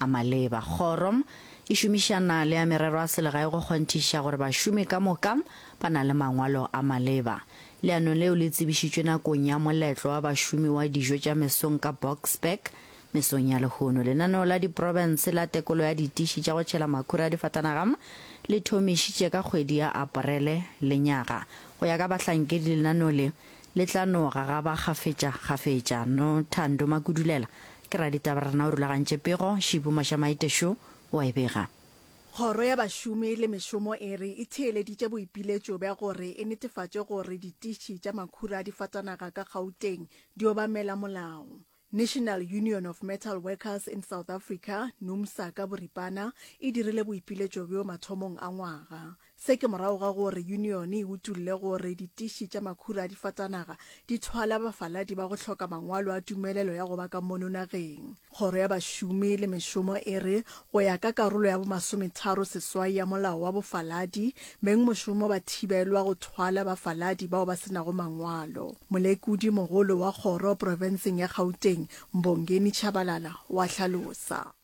a maleba. Kgoro e šomišana le ya Merero a Selegae go kgonthiša gore bašomi ka moka ba na le mangwalo a maleba. Leano leo le tsebišitšwe nakong ya Moletlo wa Bašomi wa Dijo tša Mesong ka Boksburg, mesong ya lehono. Lenaneo la Diprofense la Tekolo ya Ditiši tša go Tšhela Makhura a Difatanaga le thomišitše ka kgwedi ya Aparele lenyaga. Go ya ka bahlankedi, lenaneo le le tla no gagaba kgafetša kgafetša. Nothando Makudulela Ke raditaba rena o rulagantše pego, Shibu Mashamaite šo wa e bega. Kgoro ya Bašomi le Mešomo e re e theeleditše boipiletšo bja gore e netefatše gore ditiši tša makhura a difatanaga ka Gauteng di obamela molao. National Union of Metal Workers in South Africa, Numsa ka boripana, e dirile boipiletšo bjo mathomong a ngwaga. Se ke morago ga gore yunione e utolle gore ditiši tša makhura a difatanaga di thwala bafaladi ba go hloka mangwalo a tumelelo ya go ba ka mono nageng. Kgoro ya Bašomi le Mešomo e re go ya ka karolo ya bomasometharo seswai ya molao wa bofaladi, beng mošomo ba thibelwa go thwala bafaladi bao ba se nago mangwalo. Molekodi mogolo wa kgoro profenseng ya Gauteng, Mbongeni Tshabalala, o a hlalosa.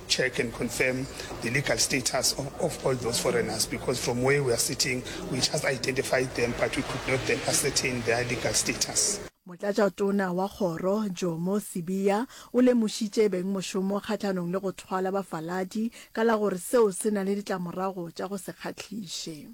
check and confirm the legal status of, of all those foreigners because from where we are sitting we just identified them but we could not then ascertain their legal status. Motlatšatona wa kgoro Jomo Sibiya o lemošitše beng mošomo kgahlanong le go thwala bafaladi ka la gore seo se na le ditlamorago tša go se kgahliše.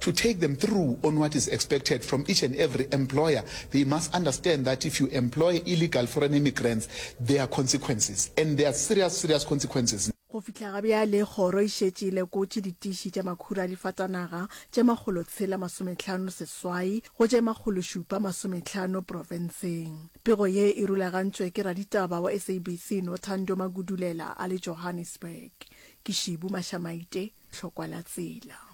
To take them through on what is expected from each and every employer, they must understand that if you employ illegal foreign immigrants, there are consequences, and there are serious, serious consequences. Go fihla ga bjale, kgoro e šetše e lekotše ditiši tša makhura a difatanaga tše makgolo tshela masometlhano seswai go tše makgolo šupa masometlhano profenseng. Pego ye e rulagantšwe ke raditaba wa SABC Nothando Magudulela a le Johannesburg. Ke Shibu Mashamaite, Tlhokwa la Tsela.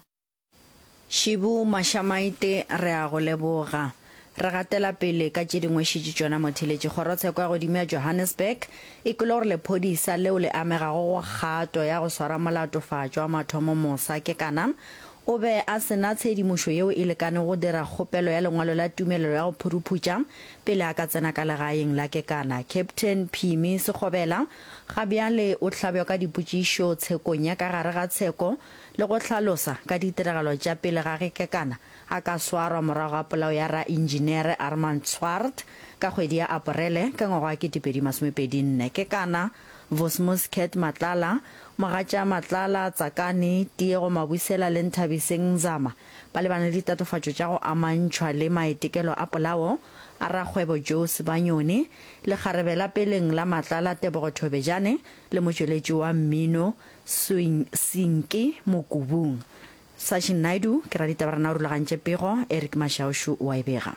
Shibu Mashamaite re a go leboga. Re gatela pele ka tše dingwe šetše tšona motheletši. Kgorotsheko ya godimo ya Johannesburg e kwele gore lephodisa leo le amegago go kgato ya go swara molatofatšwa wa mathomo mos'a kekana o be a se na tshedimošo yeo e lekanego go dira kgopelo ya lengwalo la tumelelo ya go phuruphutša pele a ka tsena ka legaeng la kekana. Captain Phimi Sekgobela ga bjale o hlabjwa ka dipotšišo tshekong ya ka gare ga tsheko le go hlalosa ka ditiragalo tša pele ga ge Kekana a ka swarwa morago ga polao ya raentšinere Armand Swart ka kgwedi ya Aporele ka ngwaga wa 2024. Kekana, Vosmus Cat Matlala, Mogatša Matlala, Tsakani, Tiego Mabusela le Nthabiseng Nzama ba lebane le ditatofatšo tša go amantšhwa le maitekelo a polao a rakgwebo Joe Sebanyoni, lekgarebe la peleng la Matlala Tebogo Thobejane le motšweletši wa mmino Swing Sinke Mokubung. Sachin Naidu, Ke ra ditaba rena o rulagantše pego, Eric Mashaushu o a e bega.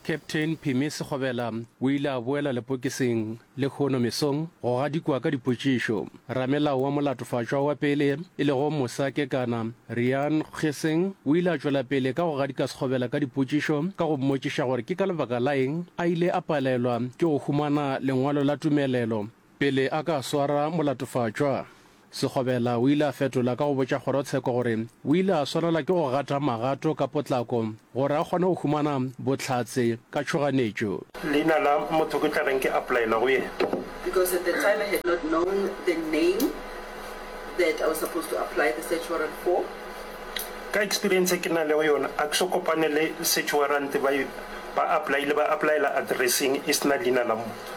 Captain Pheme Sekgobela o ile a boela lepokising lehono mesong go gadikwa ka dipotšišo. Ramelao wa molatofatšwa wa pele e lego Mosa Kekana, Riaan Gesing o ile a tšwela pele ka go gadika Sekgobela ka dipotšišo ka go mmotšiša gore ke ka lebaka la eng a ile a palelwa ke go humana lengwalo la tumelelo Pele a ka swara molatofatšwa, Segobela o ile a fetola ka go botša kgorotsheko gore o ile a swanela ke go gata magato ka potlako gore a kgone go humana bohlatse ka tšhoganetšo. Leina la motho ke tla reng ke applyela go yena? Because at the time I had not known the name that I was supposed to apply the search warrant for. Ka experience e ke na lego yona a ke so kopane le search warrant ba e ba applyile ba applyela addresseng e sena leina la motho.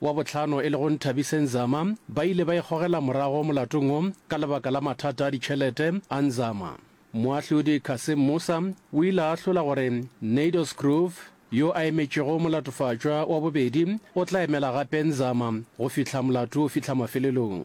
wa bohlano e lego Nthabiseng Zama ba ile ba ikgogela morago molatong wo ka lebaka la mathata a ditšhelete a Nzama. Moahlodi Cassim Musa o ile a ahlola gore Naydous Groove yo a emetšego molatofatšwa wa bobedi o tla emela gape Nzama go fihla molato o fihla mafelelong.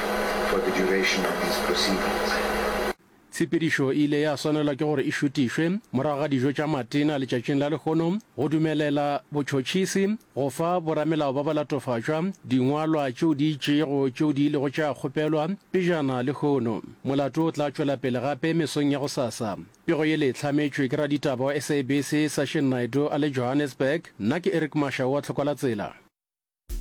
for the duration of these proceedings. Tshepedišo e ile ya swanelwa ke gore e šutišwe morago ga dijo tša matena letšatšing la lehono go dumelela botšhotšhisi go fa boramelao ba balatofatšwa dingwalwa tšeo di itšego tšeo di ilego tša kgopelwa pejana. Lehono molato o tla tšwela pele gape mesong ya go sasa. Pego yele e hlametšwe ke raditaba wa SABC Sashin Naidoo a le Johannesburg. Nna ke Eric Mashau wa Tlhokwalatsela.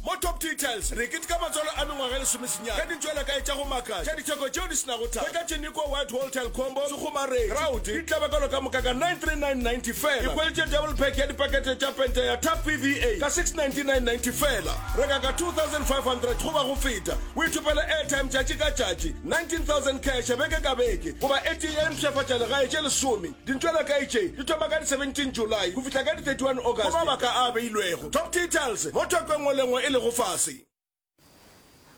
Mo Top Details re keteka matswalo a mengwaga e lesomesenyane ka dintšwelakae tša go makatša tša ditheko tšeo di se nago thaka. Hwetša Tšenikoa, Whitehall, Telkombo, Sekgomareng, Groud, di tlaba ka loka moka ka 93990 fela. Ikhwelitše double pack ya dipakete tša pente ya Tap PVA ka 69990 fela. Reka ka 2500 goba go feta, o ithopele airtime tšatši ka tšatši, 19000 cash beke ka beke, goba e tee ya dimpshafatšalegae tše lesome. Dintwa tša kae tše? Di thoma ka di 17 July go fihla ka di 31 August go mabaka a a beilwego, Top Details, mo thoko e nngwe le nngwe e lego fase.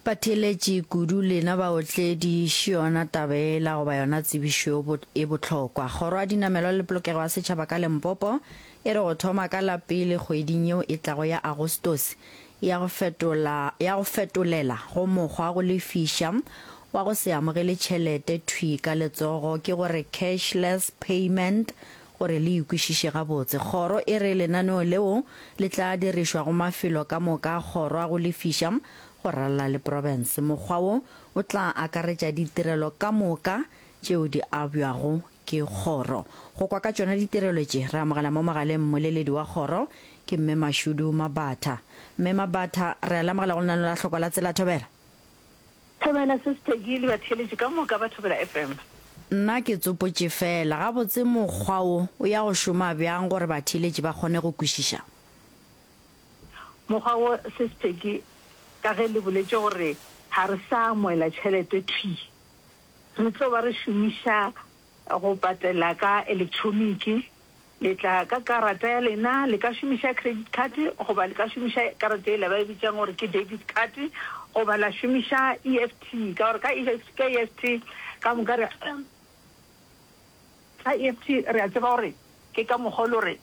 Batheeletši kudu lena baotledi, ši yona taba yela goba yona tsebišo yo bo e bohlokwa. Kgoro ya Dinamelwa le Polokego ya Setšhaba ka Lempopo e re go thoma ka la pele kgweding yeo e tlago ya Agostose ya go fetola ya go fetolela go mokgwa wa go lefiša wa go se amogele tšhelete thwi ka letsogo, ke go re cashless payment, gore le e kwešiše gabotse. Kgoro e re lenaneo leo le tla dirišwa go mafelo ka moka a kgoro a go lefiša go ralala le province. Mokgwa wo o tla akaretša ditirelo ka moka tšeo di abjwago Ke kgoro. Go kwa ka tšona ditirelo tše, re amogela mo mogaleng mmoleledi wa kgoro, ke Mme Mashudu Mabatha. Mme Mabatha, re a le amogela go lenaneo la Hloko la Tsela. Thobela. Thobela, Sis Peggy le batheeletši ka moka ba Thobela FM. Nna ke tsopotše feela, gabotse mokgwa wo o ya go šoma bjang gore batheeletši ba kgone go kwešiša? Mokgwa wo, Sis Peggy, ka ge le boletše gore ga re sa amoela tšhelete thwi, Re tlo ba re šomiša go patela ka elektroniki. Le tla ka karata ya lena. Le ka šomiša credit card goba le ka šomiša karata yela ba e bitšang gore ke debit card goba la šomiša EFT ka gore ka EFT ka moka re. Sa EFT re a tseba gore ke ka mokgwa o lo re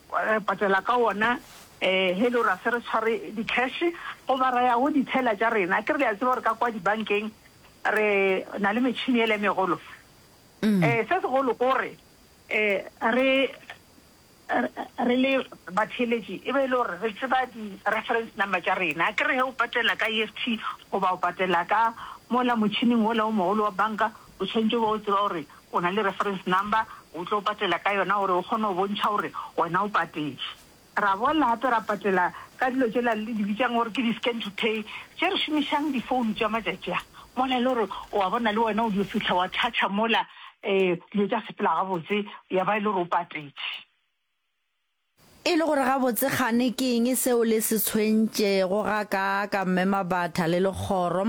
patela ka wona he lo ra se re tshware di cash goba ra ya go di teller tša rena. Ke re le a tseba gore ka kwa dibankeng re na le metšhini ele e megolo. Se segolo ko gore re. Re le batheeletši e be e le gore re tseba di-reference number tša rena. Akere ge o patela ka EFT goba o patela ka mola motšhining wola o mogolo wa banka, o tshwanetše o be o tseba gore o na le reference number, o tlo patela ka yona gore o kgone go bontšha gore wena o patetše. Ra boela gape ra patela ka dilo tšela le di bitšang gore ke di-scan to pay tše re šomišang difounu tša matšatši a, mola e le gore o a bona le wena o dio fihla wa touch-a mola dilo tša sepela gabotse, ya ba e le gore o patetše. E le gore gabotse kgane ke eng seo le se tshwentšego, ga ka ka mema batha le lekgoro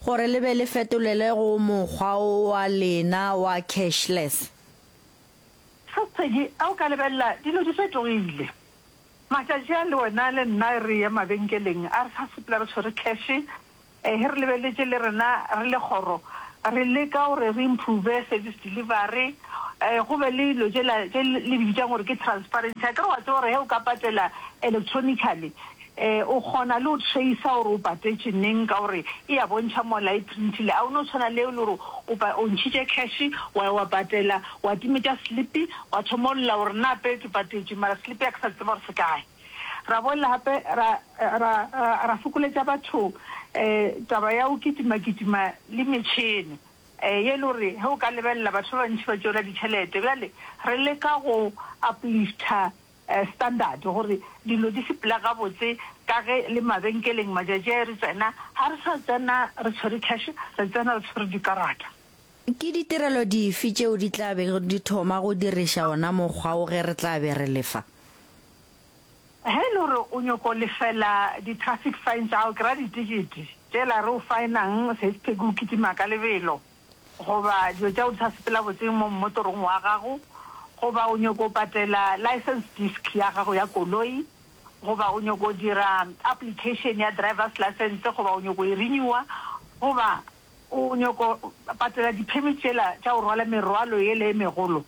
gore le be le fetolele go mokgwa wo wa lena wa cashless. Sesegi, Ge o ka lebelela, dilo di fetogile. Matšatši a le wena le nna re ya mabenkeleng a re sa sepela re tshwere cash, Ee, ge re lebeletše le rena re le kgoro, re leka gore re improve service delivery, um go be le dilo tšela tše le di bitšang gore ke transparency. Akere wa tseba gore ge o ka patela electronically, um o kgona le go tracer gore o patetše neng ka gore e a bontšha mola e printile. A o no tshwana le e le gore o ntšhitše cash, wa ya wa patela, wa timetša slip, wa thoma o lla gore na pele ke patetše mara slip ya ke sa tseba gore se kae. Ra boela gape ra, ra, ra fokoletša batho taba ya go kitimakitima le metšhene ye e le gore ge o ka lebelela batho ba bantši ba tšoela ditšhelete. Bjale re leka go uplifta standard gore dilo di sepele gabotse ka ge le mabenkeleng matšatši a e re tsena ga re sa tsena re tshwere cash, re tsena re tshwere dikarata. Ke ditirelo dife tšeo di tla bego di thoma go diriša wona mokgwa wo ge re tla be re lefa? Ge e le gore o nyoko lefela di-traffic fine tša gago, ke ra ditikiti tšela re o faenang seispeke o kitima ka lebelo goba dilo tša go di sa sepela botseng mo mmotorong wa gago goba o nyoko patela license disc ya gago ya koloi goba o nyoko dira application ya driver's license goba o nyoko e renewer goba O nyoko patela di permit tšela tša go rwala merwalo yela e megolo.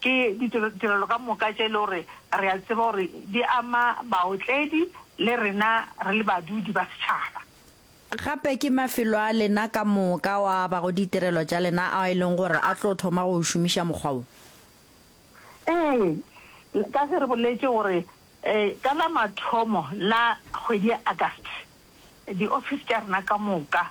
Ke ditirelo ka moka tše e le gore re a tseba gore di ama baotledi le rena re le badudi ba setšhaba. Gape ke mafelo a lena ka moka ao a abago ditirelo tša lena ao e leng gore a tlo thoma go šomiša mokgwa wo. Ee, ka ge re boletše gore ka la mathomo la kgwedi ya August di office tša rena ka moka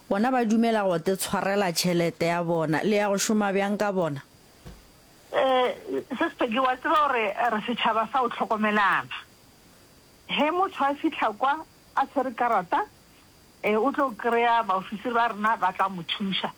Bona ba dumela go te tshwarela tšhelete ya bona. Le ya go šoma bjang ka bona? Eh, Sis Peggy, wa tseba gore re setšhaba sa go hlokomelana. Ge motho a fihla kwa a tshwere karata, eh, o tlo kry-a baofisiri ba rena ba tla mo thuša.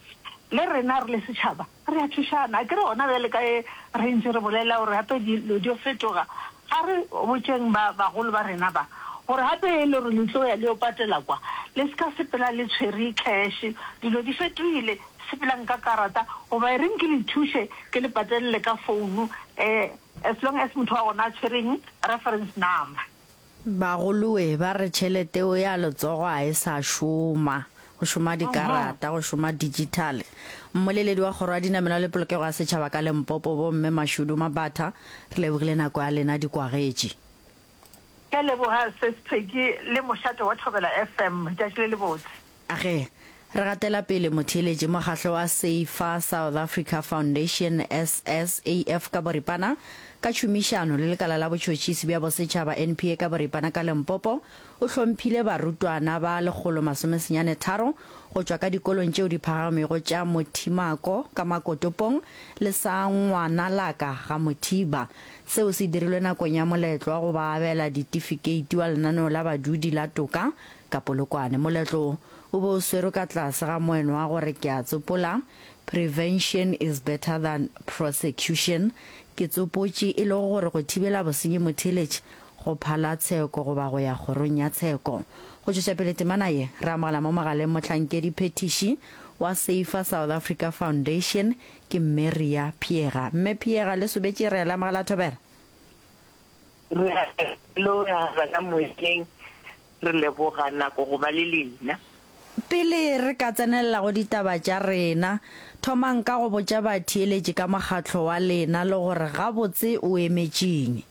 Le rena re le setšhaba Re a thušana, akere gona bjale ka ge re ntše re bolela gore gape dilo di yo fetoga, ga re botšeng ba bagolo ba rena ba, gore gape e le gore le tlo ya le yo patela kwa, le se ka sepela le tshwere kheše. Dilo di fetogile, sepelang ka karata, goba e reng ke le thuše ke le patelele ka founu, um as long as motho wa gona a tshwere eng, reference number. Bagolowe ba re tšhelete o ya letsogo a e sa šoma, go šoma dikarata, go šoma digital. Mmoleledi wa Kgoro ya Dinamelwa le Polokego ya Setšhaba ka Lempopo, bo Mme Mashudu Mabatha, re lebogile nako ya lena di kwagetše. Ke a leboga Ses Pheki le mošate wa Thobela FM. Tšatši le lebotse. A Ge re gatela pele, motheeletši mokgahlo wa Safer South Africa Foundation, SSAF, ka boripana, ka tšhomišano le lekala la botšhotšhisi bja bosetšhaba, NPA, ka boripana ka Limpopo, o hlomphile barutwana ba lekgolo masome senyane tharo go tšwa ka dikolong tšeo di phagamego tša Mothimako ka Makotopong le sa Ngwanalaka ga Mothiba. Seo se dirilwe nakong ya moletlo wa go ba abela ditifikeiti wa lenaneo la badudi la toka Ka Polokwane, moletlo o be o swerwe ka tlase ga moeno wa gore ke a tsopola, Prevention is better than prosecution, ke tsopotše e lego gore go thibela bosenyi motheeletše go phala tsheko goba go ya kgorong ya tsheko. Go tšwetša pele temana ye, re amogela mo mogaleng mohlankedi phethiši wa Safer South Africa Foundation, ke Mme Ria Pheega. Mme Pheega, le sobetše re a le amogela thobela. Re a leboga ka moyeng. Re leboga nako go ba le lena. Pele re ka tsenelela go ditaba tša rena, thomang ka go botša batheeletši ka mokgatlo wa lena le gore gabotse o emetše'ng.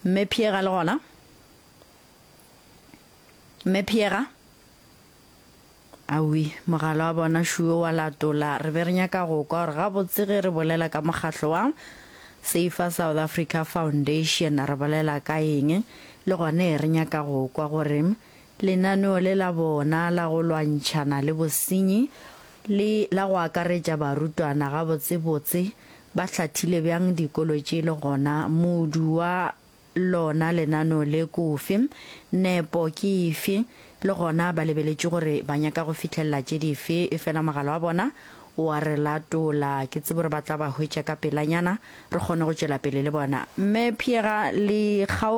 Mme Pheega le gona? Mme Pheega? Awi, mogala wa bona šuo wa latola. Re be re nyaka go kwa gore gabotse ge re bolela ka mokgatlo wa Safer South Africa Foundation re bolela ka eng, le gone re nyaka go kwa gore lenaneo le la bona la go lwantšhana le bosenyi le la go akaretša barutwana gabotsebotse ba hlathile bjang dikolo tše le gona modu wa Lona lenano le kofi? Nepo ke efe? Le gona ba lebeletše gore ba nyaka go fihlelela tše dife, efela mogala wa bona o a re latola. Ke tsebe gore ba tla ba hwetša ka pelanyana, re kgone go tšwela pele le bona. Mme Piera, le kgaoge.